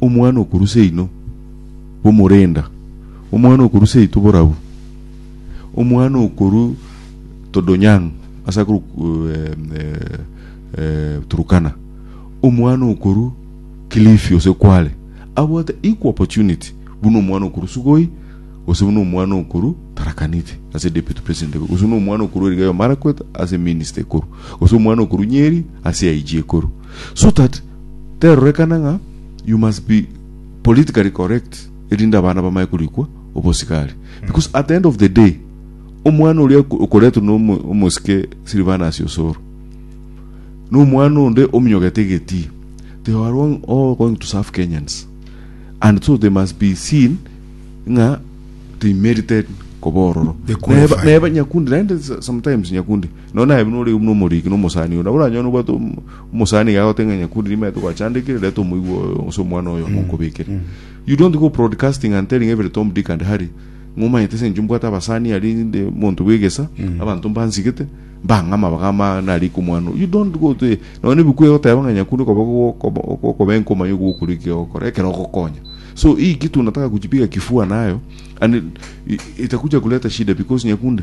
Omwana okorwa seino, bomorenda, omwana okorwa seito borabu, omwana okorwa Todonyang' ase akorwa eh, eh, eh, Turukana, omwana okorwa Kilifi ose Kwale abwate equal opportunity buna omwana okorwa Sugoi gose buna omwana okorwa Tharaka Nithi ase deputy president ekorwa gose buna omwana okorwa Elgeyo Marakwet ase minister ekorwa gose omwana okorwa Nyeri ase IG ekorwa so that Terorekana ng'a you must be politically correct erinde abana bamaye korikwa obosigari because at the end of the day omwana oria oko- okoretwe na omo- omosike Silvanus Osoro na omwana onde ominyogete egetii they are all, all going to serve Kenyans and so they must be seen ng'a they merited koba ororo They qualified. Neba- neba nyakundi naende sometimes nyakundi Nonye naye buna ore buna omoriki na omosani oyo, nabo oranyore nobwate omosani iga agote ng'a nyakundi nimaete gwachandekire, reta omoigwa oyo gose omwana oyo monkobekere. You don't go broadcasting and telling every Tom, Dick and Harry ng'a omanyete ase inche mbwate abasani aria inde monto bw'egesa, abanto mbansigete, mbang'ama bagama narike omwana oyo. You don't go to nonye na ebikuyu egoteba ng'a nyakundi okoba okoba okoba enka omanye okoba okore ki ogokora ekero ogokonya. So hii kitu unataka kujipiga kifua nayo and i- itakuja kuleta shida because nyakundi